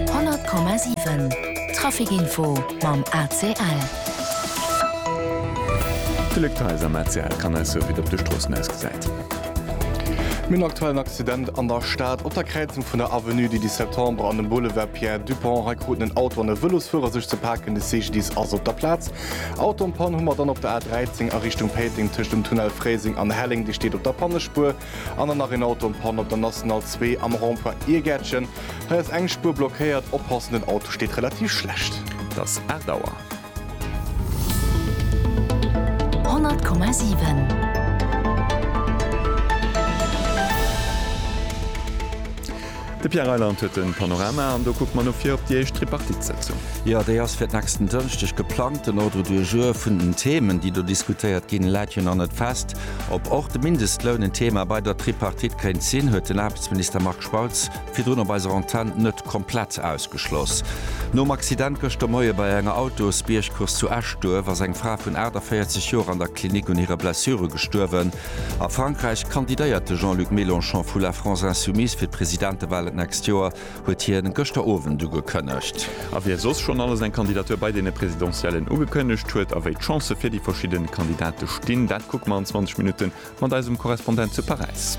100,7 Trafic Info mam ACL. D'Luc Theis am ACL kann eis soen, wéi et op de Stroossen ausgesäit. Mir hunn aktuell en Accident an der Stad. Op der Kräizung vun der Avenue du 10 Septembre an dem Boulevard Pierre Dupong. Hei kruten en Auto an e Vëlosfuerer sech ze paken. De CGDIS ass op der Plaz. Auto an Pann hu mer dann op der A 13 a Richtung Péiteng tëscht dem Tunnel Fréiseng an Helleng. Dir steet op der Pannespuer. An dann nach een Auto en Panne op der National 2 am Rond-point Iergäertchen. Hei ass eng Spuer blockéiert. Oppassen, den Auto steet relativ schlecht. Et ass 8 Auer. 100,7. De Pierre Reyland huet de Panorama an do kucke mer elo vir op déi éischt Tripartite-Sëtzung. Jo, déi ass fir d'nächsten Dënschdeg geplangt. Den Ordre du jour vun den Themen, déi do diskutéiert ginn, läit jo nach net fest. Ob och de Mindestloun en Thema bei der Tripartite kéint sinn, huet den Aarbechtsminister Marc Spautz virdrun op eiser Antenn net komplett ausgeschloss. Nom Accident gëschter Moie bei enger Autosbiergcourse zu Eschduerf ass eng Fra vun 48 Joer an der Klinik un hire Blessure gestuerwen. A Frankräich kandidéiert de Jean-Luc Mélenchon vu La France Insoumise fir d'Presidentewahlen d'nächst Joer. huet hien gëschter Owend ugekënnegt. A wie soss schonn alles eng Kandidatur bei deene Presidentiellen ugekënnegt huet a wéi d'Chancë fir déi verschidde Kandidate stinn, dat kucke mer an 20 Minutte mat eisem Korrespondent zu Paräis.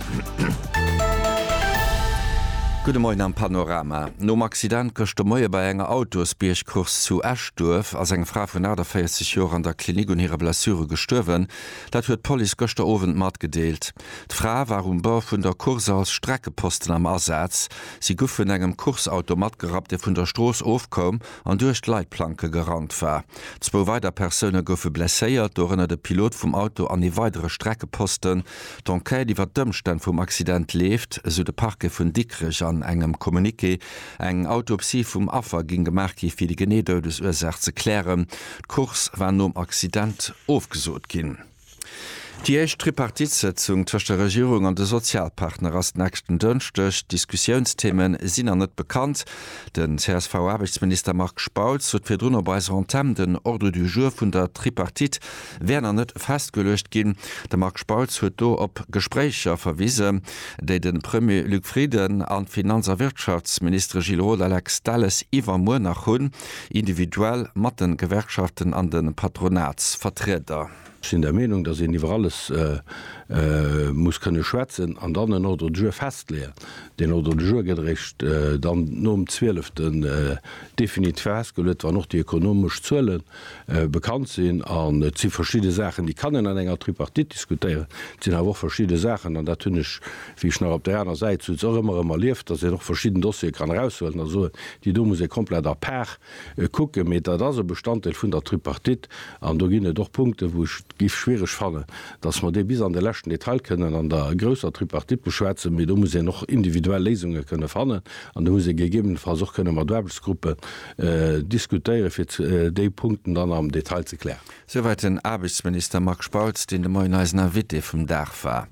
Gudde Moien am Panorama. Nom Accident gëschter Moie bei enger Autosbiergcourse zu Eschduerf ass eng Fra vun 48 Joer an der Klinik un hire Blessure gestuerwen. Dat huet d'Police gëschter Owend matgedeelt. D'Fra war um Bord vun der Course als Streckeposten am Asaz. Si guff vun engem Course-Auto matgerappt, dee vun der Strooss ofkoum an duerch d'Leitplanke gerannt war. Zwou weider Persoune goufe blesséiert, dorënner de Pilot vum Auto an ee weidere Streckeposten. D'Enquête iwwer d'Ëmstänn vum Accident leeft, esou de Parquet vun Dikrech an engem Communiqué. Eng Autopsie vum Affer géing gemaach gi fir déi genee Doudesursaach ze klären. D'Course war nom Accident ofgesot ginn. Déi éischt Tripartitesëtzung tëscht der Regierung an de Sozialpartner ass nächsten Dënschdeg. D'Diskussiounstheme sinn nach net bekannt. Den CSV-Aarbechtsminister Marc Spautz huet virdrun op eiser Antenn den Ordre du jour vun der Tripartite wär nach net festgeluecht ginn. De Marc Spautz huet do op Gespréicher verwisen, déi de Premier Luc Frieden an d'Finanz a Wirtschaftsministere Gilles Roth a Lex Delles iwwermuer nach hunn. individuell mat de Gewerkschaften an de Patronatsvertrieder. Ech sinn der Meenung, datt een iwwer alles muss kënne schwätzen an dann en Ordre du jour festleeën. Deen Ordre du jour gëtt eréischt dann nom zwieleften definitiv festgeluet, wann och déi ökonomesch Zuelen, bekannt sinn an et si verschidde Saachen, déi kann een an enger Tripartite diskutéieren. Et sinn awer och verschidde Saachen, an dat hunn ech, wéi ech nach op där aner Säit souz, och ëmmer erëm erlieft, datt een och verschidden Dossiere kann eraushuelen a soen, déi do muss ee komplett à part kucken. Mee dat ass e Bestanddeel vun der Tripartite an do ginn et och Punkten, wou ech et géif schwiereg fannen, datt mer déi bis an de leschten Detail kënnen an der grousser Tripartite beschwätzen. Mee do muss een och individuell Léisunge kënne fannen an do muss ee gegebenenfalls och kënne mat Aarbechtsgruppen, diskutéieren, fir déi Punkten dann am Detail ze klären. Souwäit den Aarbechtsminister Marc Spautz, deen de Moien eisen Invité vum Dag war.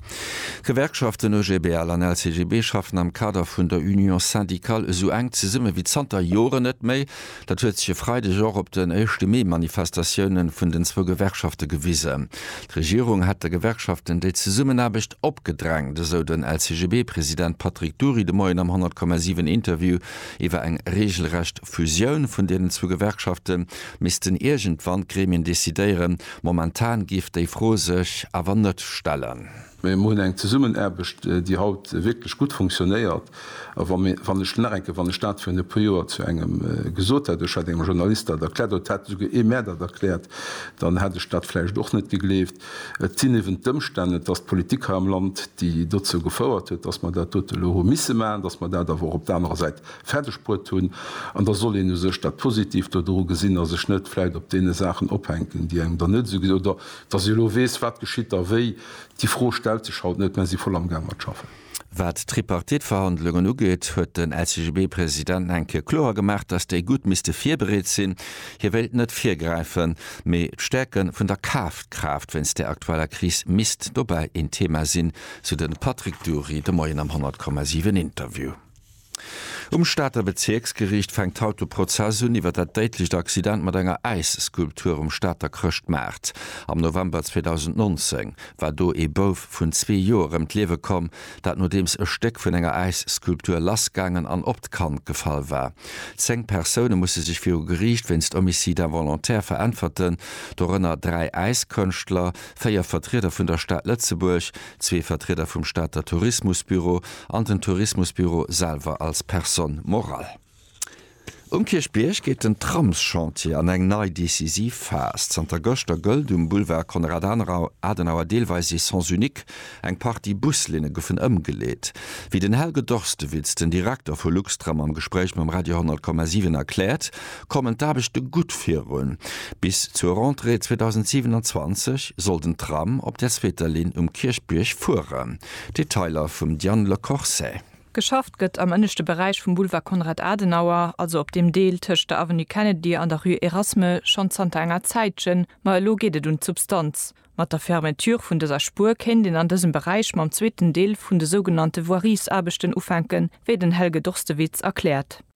D'Gewerkschaften OGBL an LCGB schaffen am Kader vun der Union syndicale esou enk zesumme wéi zanter Joren net méi. Dat huet sech e Freideg och op den Éischte Mee-Manifestatioune vun den zwou Gewerkschafte gewisen. D'Regierung hätt de Gewerkschaften déi Zesummenaarbecht opgedrängt, esou den LCGB-President Patrick Dury de Moien am 100,7 Interview. Iwwer eng reegelrecht Fusioun vun deenen zwou Gewerkschafte missten iergendwann d'Gremien decidéieren. Momentan géif déi Fro sech awer net stellen. Mir hunn eng Zesummenaarbecht, déi haut wierklech gutt funktionéiert. A wann ech nach eng Kéier, wann ech dat virun e puer Joer zu engem gesot hätt, ech hätt engem Journalist dat erkläert oder et hätt esouguer ee mär dat erkläert, dann hätt ech dat vläicht och net gegleeft. Et sinn eben d'Ëmstänn, et ass d'Politik hei am Land, déi dozou gefouert huet, dass mer dat dote elo hu misse maachen, dass mer dat awer och op der anerer Säit fäerdegbruet hunn. An da soll een u sech dat Positivt dodru gesinn a sech net vläicht op deene Saachen ophänken, déi engem dann net esou gesi-, oder dass ee elo weess, wat geschitt da wéi, déi Fro stellt sech haut net, mä si voll amgaang mat schaffen. Wat d'Tripartite-Verhandlungen ugeet, huet den LCGB-President enke kloer gemaach, datt déi gutt misste virbereet sinn. Hie wéilt net virgräifen, mee d'Stäerke vun der Kafkraaft wéinst der aktueller Kris misst dobäi een Thema sinn, sou de Patrick Dury de Moien am 100,7 Interview. Um Stater Bezierksgeriicht fänkt haut de Prozess un iwwer dat déidlecht Accident mat enger Äisskulptur um Stater Chrëschtmaart. Am November 2019 war do ee Bouf vun zwee Joer ëm d'Liewe komm, dat nodeems e Stéck vun enger Äisskulptur lassgaangen an op d'Kand gefall war. Zéng Persoune musse sech viru Geriicht wéinst Homicide involontaire veräntwerten, dorënner dräi Äiskënschtler, véier Vertrieder vun der Stad Lëtzebuerg, Zwee Vertrieder vum Stater Tourismusbüro an den Tourismusbüro selwer als Personne morale. Um Kierchbierg geet den Tramschantier an eng nei decisiv Phas. Zanter gëschter gëllt um Boulevard Konrad Adenauer deelweis ee Sens unique. Eng Partie Buslinne goufen ëmgeleet. Wéi den Helge Dorstewitz, den Direkter vu Luxtram, am Gespréich mam Radio 10,7 erkläert, kommen d'Aarbechte gutt virun. Bis zur Rentrée 2027 soll den Tram op der zweeter Linn um Kierchbierg fueren. Detailer vum Diane Le Corset. Geschafft gëtt am ënneschte Beräich vum Boulevard Konrad Adenauer, also op deem Deel tëscht der Avenue Kennedy an der Rue Erasme, schonn zanter enger Zäitchen. Ma elo geet et un d'Substanz. Mat der Fermeture vun dëser Spuer kéint een an dësem Beräich mam zweeten Deel vun de sougenannte Voiriesaarbechten ufänken, wéi den Helge Dorstewitz erkläert.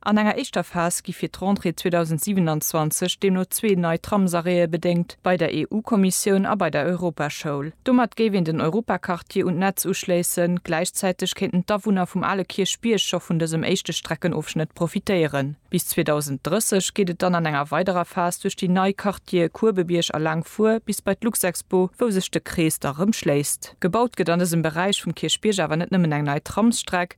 An enger éischter Phas gi fir d'Rentrée 2027 deemno zwee nei Tramsarrêtë bedéngt, bei der EU-Kommissioun a bei der Europaschoul. Domat géif een den Europaquartier un d'Netz uschléissen, gläichzäiteg kéinten d'Awunner vum ale Kierchbierg scho vun dësem éischte Streckenofschnëtt profitéieren. Bis 2030 geet et dann an enger weiderer Phas duerch déi nei Quartiere Kuebebierg a Laangfuer bis bei d'Luxexpo, wou sech de Krees da rëm schléisst. Gebaut gëtt an dësem Beräich vum Kierchbierg awer net nëmmen eng nei Tramsstreck,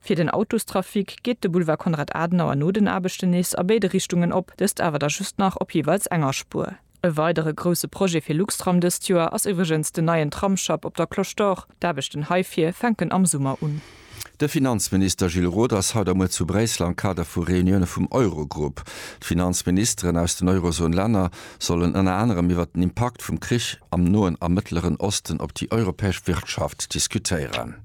Fir den Autostrafic geet de Boulevard Konrad Adenauer no den Aarbechten nees a béide Richtungen op, dëst awer da just nach op jeeweils enger Spuer. E weidere grousse Projet fir Luxtram dëst Joer ass iwwregens den neien Tramsschapp op der Cloche d'Or. D'Aarbechten heifir fänken am Summer un. De Finanzminister Gilles Roth ass haut a muer zu Bréissel am Kader vu Reunioune vum Eurogrupp. D'Finanzministeren aus den Eurozon-Länner sollen ënner anerem iwwert den Impakt vum Krich am Noen a Mëttleren Osten op déi europäesch Wirtschaft diskutéieren.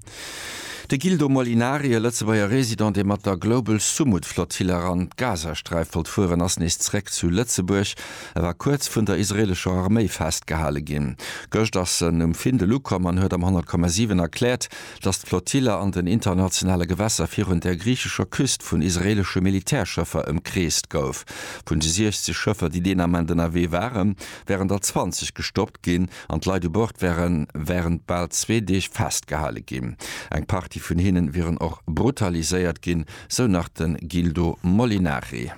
De Gildo Molinari, e Lëtzebuerger Resident, dee mat der Global Sumud Flottille eran d'Gazasträif wollt fueren, ass nees zréck zu Lëtzebuerg. E war kuerz vun der israelescher Arméi festgehale ginn. Gëscht ass en um Findel ukomm an huet am 100,7 erkläert, datt d'Flottille an den internationale Gewässer virun der griichescher Küst vun israelesche Militärschëffer ëmkreest gouf. Vun de 60 Schëffer, déi deen Ament ënnerwee waren, wären der 20 gestoppt ginn. an d'Leit u Bord wäre wärend bal zwee Deeg festgehale ginn. Eng Partie vun hinnen wieren och brutaliséiert ginn, sou nach de Gildo Molinari.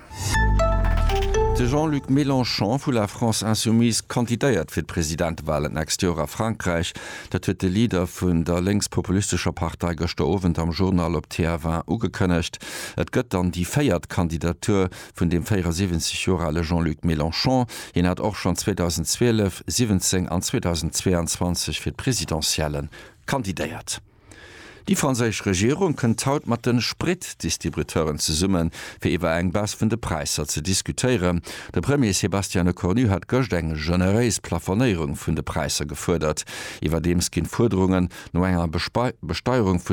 De Jean-Luc Mélenchon vu La France Insoumise kandidéiert fir d'Presidentewalen d'nächst Joer a Frankräich. Dat huet de Leader vun der lénks-populistescher Partei gëschter Owend am Journal op TF1 ugekënnegt. Et gëtt dann déi véiert Kandidatur vun dem 74 Joer ale Jean-Luc Mélenchon. Hien hat och schonn 2012, 17 an 2022 fir d'Presidentiellen kandidéiert. Déi franséisch Regierung kënnt haut mat de Spritdistributeuren zesummen, fir iwwer eng Baisse vun de Präisser ze diskutéieren. De Premier Sébastien Lecornu hat gëscht eng generéis Plafonéierung vun de Präisser gefuerdert. Iwwerdeems ginn d'Fuerderungen no enger Besteierung vun